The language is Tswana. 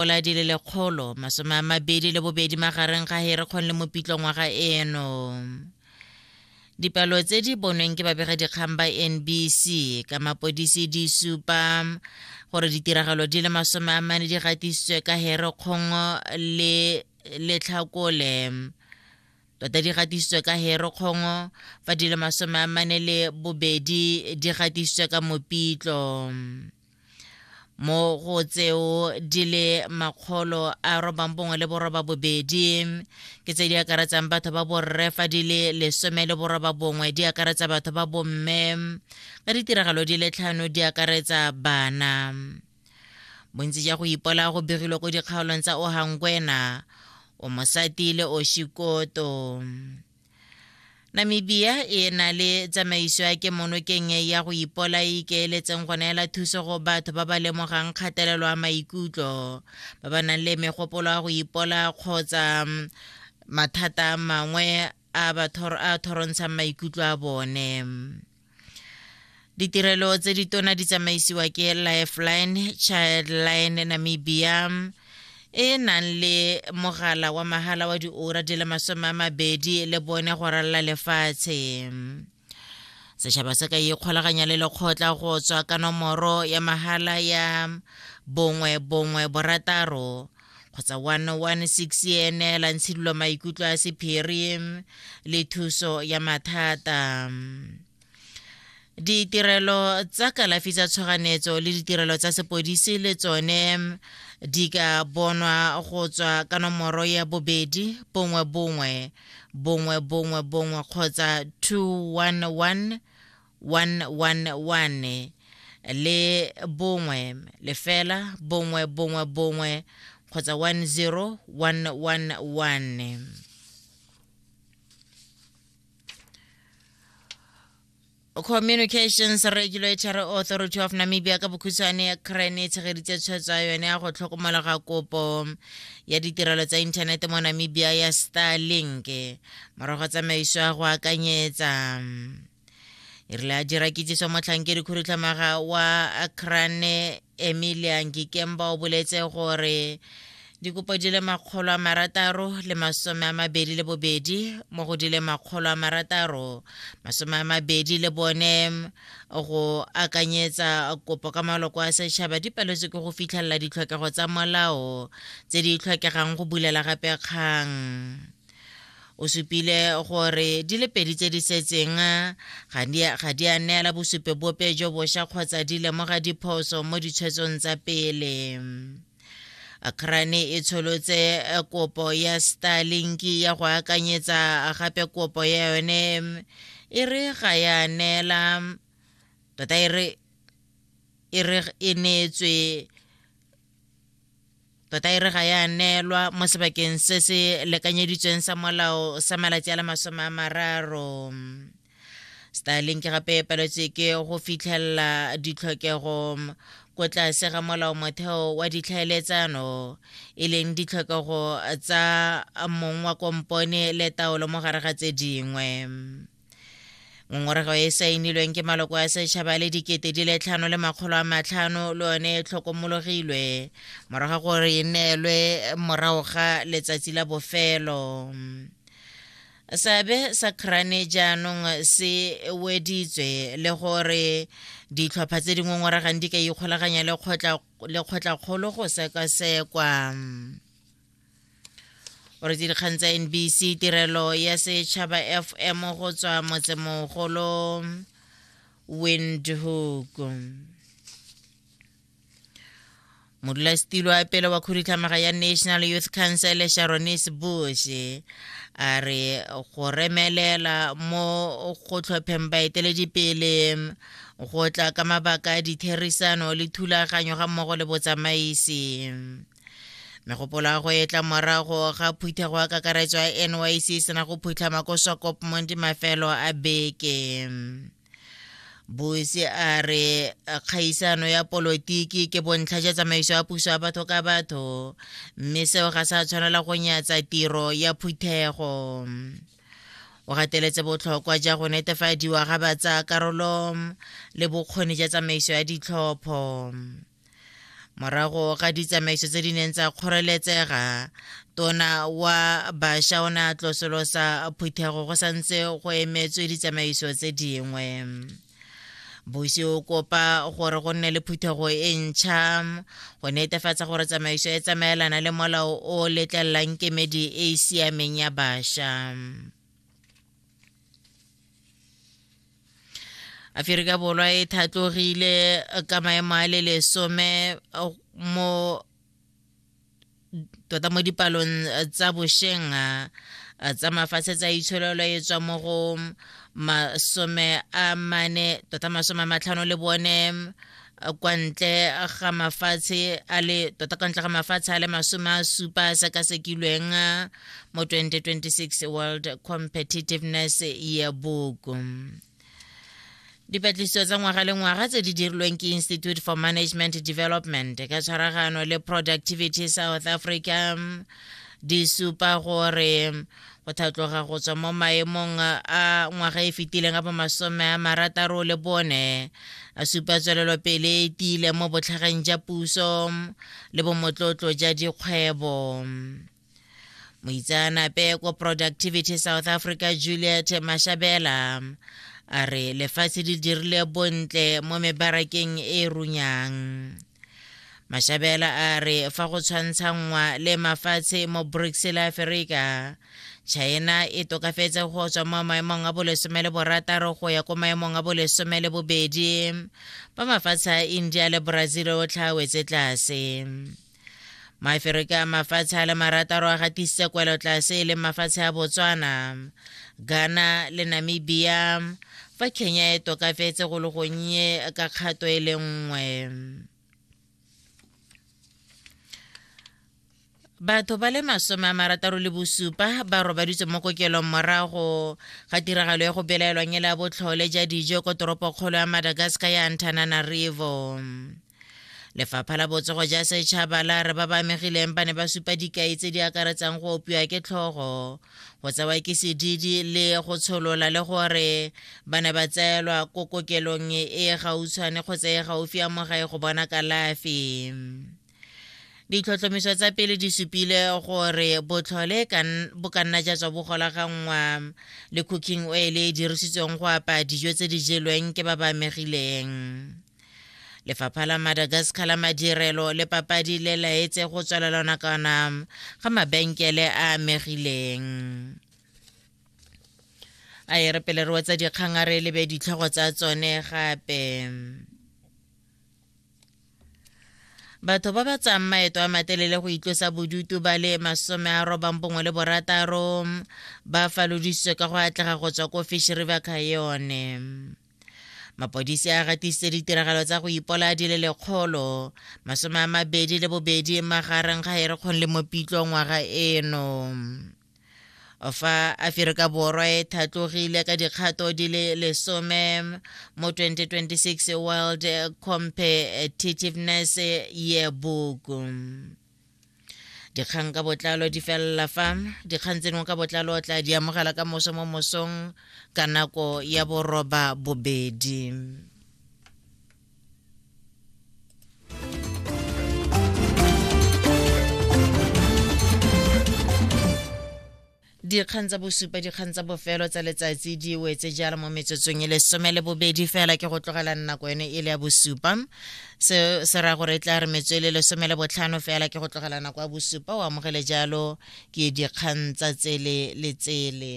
dipula di le lekgolo masome a mabedi le bobedi magareng ga herekgong le mopitlo ngwaga eno dipalo tse di bonweng ke babegadikgang ba nbc ka mapodisi di supa gore ditiragalo di le masome a mane di gatisitswe ka herekgong le letlhakole tota di gatisitswe ka herekgong fa di le masome a mane le bobedi di gatisitswe ka mopitlo mo go tseo di le makgolo a robang bongwe le boroba bobedi ke tse di akaretsang batho ba borre fa di le lesome le boroba bongwe di akaretsa batho ba bomme ka ditiragalo di le tlhano di akaretsa bana bontsi ja go ipola go begilwe ko dikgaolong tsa ohangwena o mosati le oshikoto Namibia e na le tsamaiso ya kemonokeng ya go ipola e ikeeletseng go neela thuso go batho ba ba lemogang kgatelelo ya maikutlo ba ba nang le megopolo ya go ipola kgotsa mm, mathata a mangwe a a thorontshang maikutlo a bone. ditirelo tse di tona di tsamaisiwa ke lifeline childline namibia e nang le mogala wa mahala wa diora di le masome a mabedi le bone go ralla lefatshe setšhaba se ka ikgolaganya le lekgotla go tswa ka nomoro ya mahala ya bongwe bongwe borataro kgotsa 116 e eneelang tshidilo maikutlo a sephiri le thuso ya mathata ditirelo tsa kalafi tsa tshoganyetso le ditirelo tsa sepodisi le tsone di ka bonwa go tswa ka nomoro ya bobedi bongwe bongwe bongwe bongwe bongwe kgotsa 211 111 le bongwe lefela bongwe bongwe bongwe kgotsa 10111 communications regulatory authority of namibia ka bokhutshwane ya cran e tshegeditse tshwetso ya yone ya go tlhokomela ga kopo ya ditirelo tsa inthanete mo namibia ya starlink morago tsamaiso ya go akanyetsa e rile a dira kitsiso motlhankedi khudutlhamaga wa crane emilia ngikemba o boletse gore dikopo di le makgolo a marataro le masome a mabedi le bobedi mo go di le makgolo a marataro masome a mabedi le bone go akanyetsa kopo ka maloko a setšhaba di paletswe ke go fitlhelela ditlhokego tsa molao tse di tlhokegang go bulela gape kgang O supile gore di le pedi tse di setseng ga di a neela bosupe bope jo bosha kgotsa di lemoga diphoso mo ditshwetsong tsa pele. Akrane e tsholotse eh, kopo ya Starlink ya go akanyetsa gape kopo ya yone e re ga ya neela tota e re e neetswe tota e re ga ya neelwa mo sebakeng se se lekanyeditsweng sa molao sa malatsi a le masome a mararo starlink gape e paletswe ke go fitlhelela ditlhokego ko tlase ga molao motheo wa ditlhaeletsano e leng ditlhokego tsa mong wa kompone le taolo mo gare ga tse dingwe ngongorego e saenilweng ke maloko a setšhaba le dikete di le tlhano le makgolo a matlhano le yone e tlhokomologilwe morago gore e neelwe morago ga letsatsi la bofelo seabe sa crane jaanong se weditswe le gore ditlhopha tse di ngongoregang di ka ikgolaganya le kgotla kgolo go sekasekwa o re dikgang tsa nbc tirelo ya setšhaba fm go tswa motsemogolo windhoek modulasetilo wa pele wa khudutlhamaga ya national youth council sharonis bush a re go remelela mo go tlhopheng baeteledipele go tla ka mabaka a ditherisano le thulaganyo ga mmogo le botsamaisi megopolo ya go etla morago ga phuthego ya kakaretso ya nyc e sena go phutlhama ko swakopmong di mafelo a beke bosi a re kgaisano ya polotiki ke bontlha ja tsamaiso ya puso ya batho ka batho mme seo ga sa tshwanela go nyatsa tiro ya phuthego o gateletse botlhokwa ja go netefadiwa ga batsa karolo le bokgoni ja tsamaiso ya ditlhopho morago ga ditsamaiso tse di neng tsa kgoreletsega tona wa bašwa o ne a tlosolosa phuthego go santse go emetswe ditsamaiso tse dingwe bosi o kopa gore go nne le phuthego e ntšha go netefatsa gore tsamaiso e tsamaelana le molao o letlelelang kemedi e e siameng ya bašwa aferika borwa e thatlogile ka maemo a le lesome uh, mo tota mo dipalong uh, tsa bosheng uh, tsa mafatshe tsa itsholelo e tswa mo go masome a mane tota masome a matlhano le bone kwa ntle ga mafatshe a le tota kwa ntle ga mafatshe a le masome a supa a sekasekilweng uh, mo 2026 world competitiveness yearbook dipatlisiso tsa ngwaga le ngwaga tse di dirilweng ke institute for management development ka tshwaragano le productivity south africa um, di supa gore go thatloga go tswa mo maemong a ngwaga e fetileng a bomasome a marataro le bone a supa tswelelopele e tiile mo botlhageng ja puso le bomotlotlo ja dikgwebo moitseanape ko productivity south africa juliet mashabela a re lefatshe di dirile bontle mo mebarakeng e runyang mashabela a re fa go tshwantshanngwa le mafatshe mo brics le aferika china e tokafetse go tswa mo maemong a bolesome le borataro go ya ko maemong a bolesome le bobedi ba mafatshe a india le brazil o tlhawetse tlase maaferika a mafatshe a le marataro a gatisitse kwelotlase e leng mafatshe a botswana ghana le namibia fa kenya e tokafetse go le gonnye ka kgato e le nngwe batho ba le masome a marataro le bosupa ba robaditswe mo kokelong morago ga tiragalo ya go belaelwang e le ya botlhole ja dijo ko toropokgolo ya madagascar ya antananarivo lefapha la botsogo ja setšhaba la re ba ba amegileng ba ne ba supa dikai tse di akaretsang go opiwa ke tlhogo go tsewa ke sedidi le go tsholola le gore ba ne ba tseelwa ko kokelong e e gautshwane kgotsa e gaufi ya mogae go bona kalafi ditlhotlhomiso tsa pele di supile gore botlhole bo ka nna ja tswa bo golaganngwa le cooking oil e dirisitsweng go apa dijo tse di jelweng ke ba ba amegileng lefapha la madagascar la madirelo le papadi le laetse go tswelela nakwana ga mabenkele a amegileng a e re pele re wetsa dikgang a re lebe ditlhogo tsa tsone gape batho ba ba tsang maeto a matelele go itlosa bodutu ba le masome a robang bongwe le borataro ba falodisitswe ka go atlega go tswa ko fish river cayone mapodisi a gatisitse ditiragalo tsa go ipola di le lekgolo masome a mabedi le bobedi magareng ga erekgong le mopitlo ngwaga eno fa aferika borwa e thatlogile ka dikgato di le lesome mo 2026 world competitiveness yearbook dikgang ka botlalo di felela fa dikgang tseno ka botlalo o tla di amogela ka moso mo mosong ka nako ya boroba bobedi dikgang tsa bosupa dikgang tsa bofelo tsa letsatsi di wetse jalo mo metsotsong e lesome le bobedi fela ke go tlogela nako ene e le ya bosupa se se raya gore e tla re metso e le lesome le botlhano fela ke go tlogela nako ya bosupa o amogele jalo ke dikgang tsa tsele le tsele